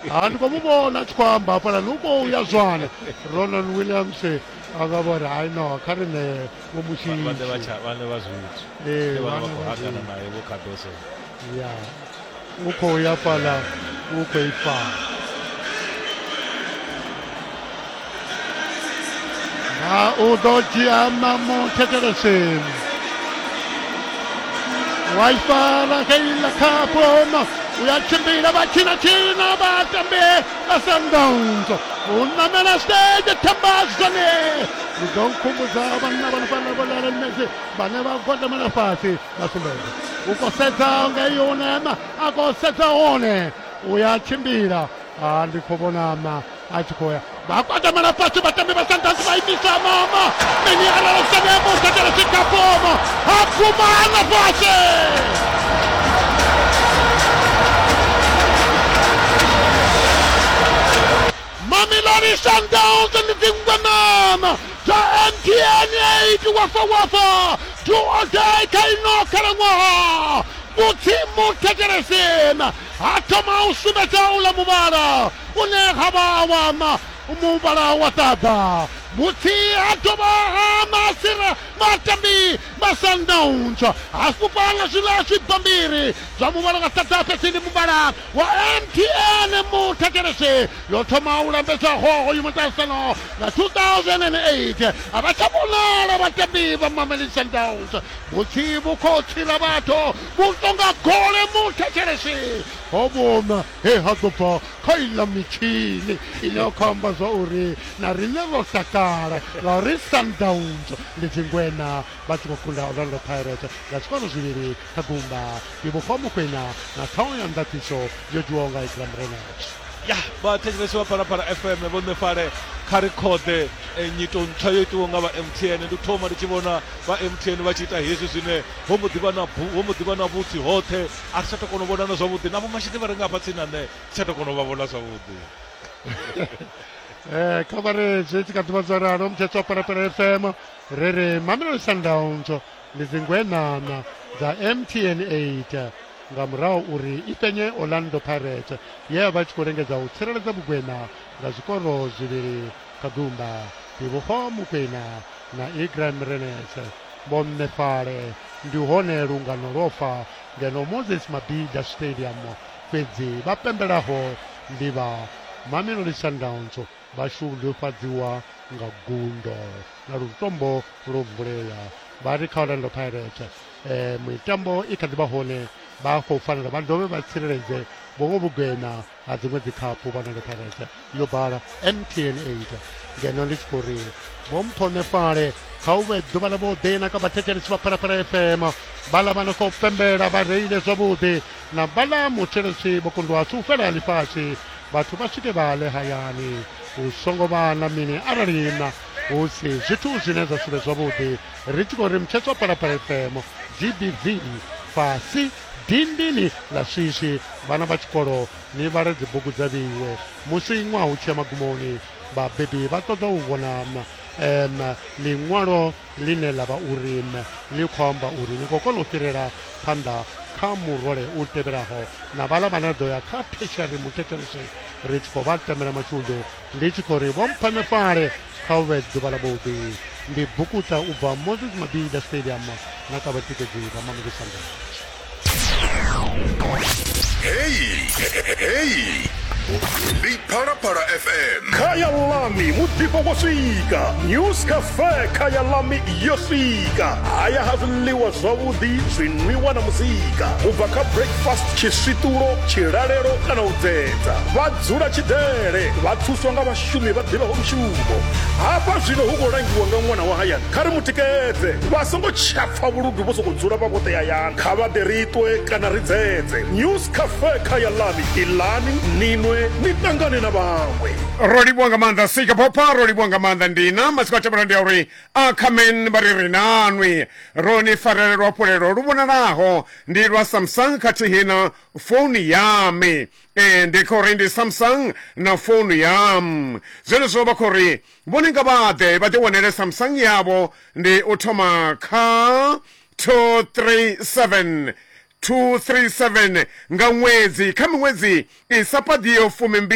ha ndi khou mu vhona a tshi khou amba hafhaḽani u khou ya zwana ronan williams a nga vho ri hai no kha ri ne vho mushiitsivhane vha zwithu ya u khou ya fhaḽa u khou ifala nga u ḓo dzhia mamu thetsheleseni waifa la heila khapoma u ya tshimbila vha tshina tshina vha tambe a sandaunzo u namela stage thambazone u ḓo nkhumbudza vhanna vha nifana vho lala mmedzi vhane vha gwadamela fhasi vha sumbedza u khou sedza nga iyo unema a khou sedza hone u ya tshimbila a ndi khou vhonama a tshi khou ya vha kwatamela fhasi vhatambi vha sundowns vha imisa mama mini arali sane mukatela sikapoma ha pfuma ana fhasi mamilani sundowns ndi dzingwanana dza mtn 8 wafa wafa tuodai kha ino khalaṅwaha vhutsimu thetshelesena ha thoma u sumbedza ula muvhala une ha vha a wana muvhala wa ṱaḓa mutsi ha dovha ha masira matambi vha sundowns ha fhufha nga zwiḽa zwibammbiri zwa muvhala wa ṱaḓa fhedzi ndi muvhala wa mtn muthakelese yo thoma u lambedza hoho yu muṱahisano nga 2008 a vha tsha vhonala vhatambi vha mameli sundowns mutsi vhu khou tsira vhathu vhu tonga gole muthakelese ho vhona he ha ḓo bva kha iḽa mitshini ine ya khou amba zwa uri na riṋe ro takala ngauri sundowns ndi dzingwena vha tshi khou kunda orlando pirates nga zwikoro zwivhili kha gumba ndi vhofha mokwena na ṱhaho ya ndaṱiso yo dzhiwaho nga ikram renach ya vhathetshelesi vha phalaphala fm vho ṋe fale kha ri khoḓe eh, nyito ntswa yo itiwaho nga vha mtn ndi thoma ndi tshi vhona vha mtn vha tshi ita hezwi zwine ho mbo ḓivha na bu- ho mbo ḓivha na vhutsi hoṱhe a ri tsha tou kona u vhonana zwavhuḓi na vhomashini vha re nga hafha tsini na nṋe ri tsha tou kona u vha vhona zwavhuḓi um kha vha re zwi tshi kha ḓivha zwo ralo mutshetso wa parapara fm ri ri mamelodi sundowns ndi dzingwenana dza mtn 8 nga murahu uri i penye orlando pirates ye ya vha tshi khou lengedza u tsireledza vhugwena nga zwikoro zwivhili Kagumba, Ndivhuho Mukwena na Igram Renese vhonṋefhale ndi hone lungano lwo fa ngeno Moses Mabhida Stadium fhedzi vha pembelaho ndi vha Mamelodi Sundowns vha shudufhadziwa nga gundo na lutombo lwo vulea vha ri kha Orlando Pirates eh, mitambo i kha ḓi vha hone vha khou fanela vha dovhe vha tsireledze vhongo vhugwena ha dziṅwe dzikhaphu vha nonge pharete yo bala mtn 8 ngeno ndi tshi khou ri vho mphonefale kha u vhe ḓuvha ḽa vhuḓi na kha vhathetshelesi vha phalaphala fm vhala vha no khou pembela vha reile zwavhuḓi na vhala mutshelesi vho kundwa si u fhela ḽifhasi vhathu vha swike vha ḽe hayani hu songo vha na mini arali na hu si zwithu zwine zwa sivhe zwavhuḓi ri tshi khou ri mutshetswa phalaphala fm gbv fasi Dindini ḽa swiswi vhana vha tshikolo ni vhale dzibugu dza vheiwe musi ṅwaha u tshi ya magumoni vhabebi vha ṱoḓa u vhona um ḽiṅwalo ḽine ḽa vha uri ḽi khou amba uri ni khou kona u fhirela phanḓa kha murole u tevhelaho na vhala vhane ḓo ya kha theshiari muthetshelese ri tshi khou vha tamela mashudu ndi tshi khou ri vho mpfana fale kha u vhe ḓuvha ḽa vhuḓi ndi bukuta u bva moses mabida stadium na kha vhatikedzi vha mamukisando heyi heyi ndi phalaphala fm khaya lami muḓifho wo swika news cafe khaya lami yo swika haya ha zwiḽiwa zwavhuḓi zwinwiwa na muzika u bva kha breakfast tshiswiṱulo tshilalelo kana u dzedza vha Dzula Tshidele vha thuswa nga vhashumi vha ḓivhaho mushumo. Hafha zwino hu khou langiwa nga ṅwana wa hayani. Kha ri mu tikedze. Vha songo tsha pfa vhuludu vho sokou dzula vha vhoṱhe hayani. Kha vha ḓe ri ṱwe kana ri dzedze. News Cafe kha ya Lami, iḽani, ni nwe, ni ṱangane na vhaṅwe. Ro livhuwa nga maanḓa Sika Phopha ro livhuwa nga maanḓa Ndina matsiko a tevhela ndi a uri Ackerman vha ri ri nanwi ro ni farela luhafhulelo lu vhonalaho ndi lwa Samsung khathihi na founu yami ee ndi kho ri ndi samsung na founu yam zwenezwo vha khou ri vhone nga vhaḓe vha ḓiwanele samsung yavho ndi u thoma kha 237 237 nga ṅwedzi kha miṅwedzi i sa paḓiho fumi